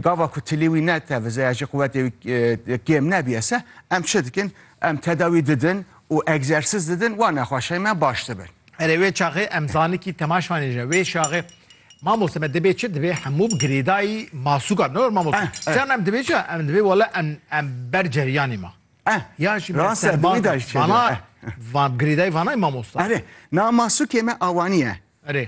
Gava ku tilî wî netevize ya jî quwetê wî kêm nebîye se em çi dikin? Em tedawî didin û egzersîz didin wa nexweşeyên me baş dibin. Erê wê çaxê em zanikî temaş vanêje wê çaxê Mamoste me dibê çi dibê hemû bi girêdayî masûka ne mamoste çan em dibê çi em dibê wele em em ber ceryanê ma ya jî me serma vana girêdayî vanayî mamoste. Erê na masûkê me awanî ye. Erê.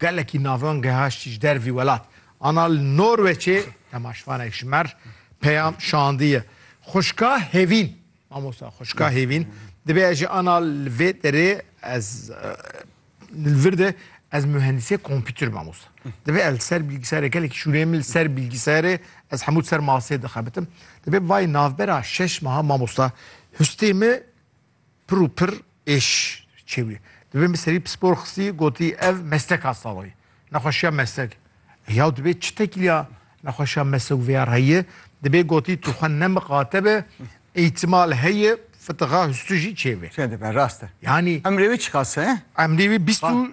Gelekî navran gehaştî ji dervî welat ana li Norweçê temaşvanek ji mer peyam şandiye. Xuşka Hevîn, mamosta xuşka Hevîn dibê ez jî ana li vê derê ez li vir de ez mühendisê kompîtir mamosta. Dibê ez li ser bilgisayarê gelekî şûneyê min li ser bilgisayarê ez hemû ser masê dixebitim. Dibê vay navbera şeş meha mamosta hustê min Pir û pir êş çêbûye. Divê min serî pispor xistî gotî ev mesleka sawayê. Nexweşiya meslek. Yaw divê çi tekîliya nexweşiya meslek vêya reyê? Divê gotî tu xwe nemiqate be îhtimal heye fitixa hustû jî çêbê. Çêdibe rast e. Yanî. Emrê wî çiqas e? Emrê wî bîst û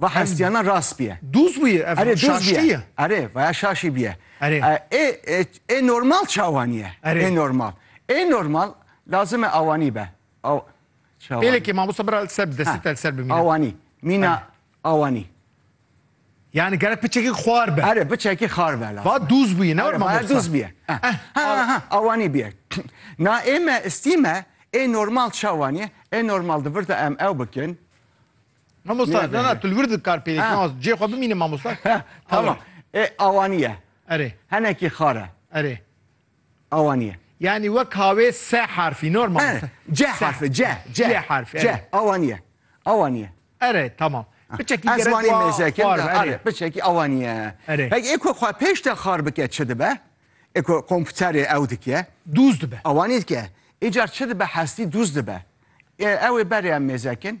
Va hestiya na rast biye. Duz biye ev Erê duz biye. şaştiye. Erê vaya şaşî biye. Erê. Ê ê normal çawaniye. Erê. Ê normal. Ê normal lazime awanî be. Aw çawanî. Pêlekê mamosta bira li ser bi destê te li ser bimîne. Awanî. Mîna awanî. Yani gerek biçekî xwar be. Erê biçekî xwar be lazim. Va duz biye. Ne var mamosta. Va duz biye. Ha ha awanî biye. Na ê me istîme ê normal çawaniye. Ê normal di vir de em ew bikin. Mamosta na na tu li wir dikar pêlê kî az cê xwe bimîne mamosta. Tamam. E awaniye. Erê. Henekî xare. Erê. Awaniye. Yani wek havê se harfî normal. E, C harfi C C C harfi. C awaniye. Awaniye. Erê tamam. Biçekî gerek wa. Ezmanî mezekim da. Erê biçekî awaniye. Erê. Hek eko xwe pêş de xar bike çi dibe? Eko kompûterê ew dikiye. Dûz dibe. Awanî dikiye. Îcar çi dibe hestî dûz dibe. E ew ê berê em mêzekin.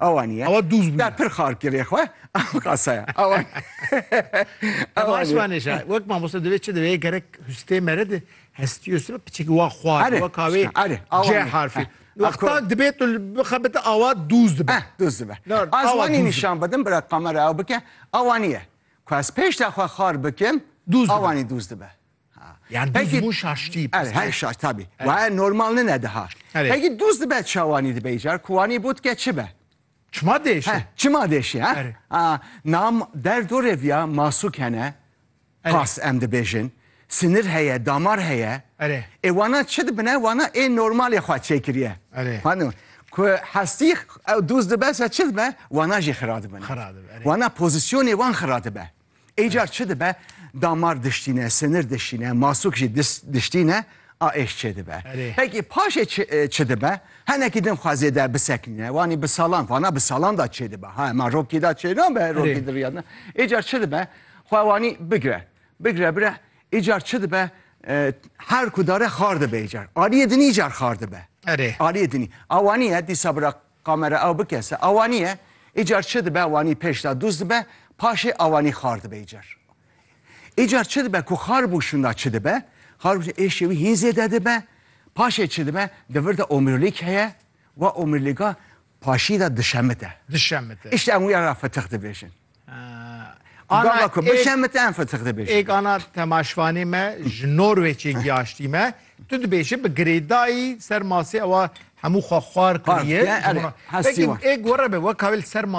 Awa niye. Awa dûz bûye. Ya pir xar kirê xwe, ew qasa ye. Awa Awa niye. Asmanê şa. Wek mamoste divê çi divê gerek hustê mere de hestiyo sebe piçekî wa xwar. Erê, Wek avê şka, erê, awa C niye. harfê. Heh, Wexta akor. dibê tu bixebite awa dûz dibe. Heh, dûz dibe. Na, awa Az wanî dûz dibe. nîşan bidim bira kamera ew bike. Awa niye. Ku ez pêşta xwe xar bikim, Dûz dibe. awa nî dûz dibe. Yani duz mû şaştî. Erê her şaş tabî. Waye normal nine daha. Peki duz dibe çawanî dibe îcar ku wanî bû dike çi be? Çima dêşe? Çima dêşe ha? Nam derdo rê viya masûk hene. Pas em dibêjin. Sinir heye, damar heye. Erê. Ê wana çi dibine wana ê normalê xwe çêkiriye. Erê. Hani ku hestî duz dibe se çi dibe wana jî xira dibine. Xira dibe. Wana pozisyonê wan xira dibe. Ê car çi dibe damar diştîne, sinir dişîne, masûk jî diştîne a êş çêdibe. Pekî paşê çi dibe henekî din xwe zêde bisekinîne wanî bi salan vana bi salan da çêdibe ha ma rokî da çê nabe rokî diriyadin. Ê car çi dibe xwe wanî bigire bigire bire ê car çi dibe her ku dare xar dibe ê car aliyê dinî car xar dibe. Erê. Aliyê dinî. Awanî ye dîsa bira Kamera ew bikese awanî ye, îcar çi dibe wanî pêş da dûz dibe, paşê awanî xar dibe îcar. Îcar çi dibe ku xar bû şûnda çi dibe, xar bû êşê wî hîn zêde dibe, paşê çi dibe di vir de omîrlîk heye, wa omîrlîga paşî de dişemite. Dişemite. Îşte em wî ya ra fitix dibêjin. Ana ku bişemit em fetix dibêjin. Êk ana temaşvanê me ji Norwêçê giyaştî me. Tu dibêjin bi girêdayî ser masê ewa hemû xwe xwar kiriye. Hestî wan. Êk were be wek kawê li ser masê.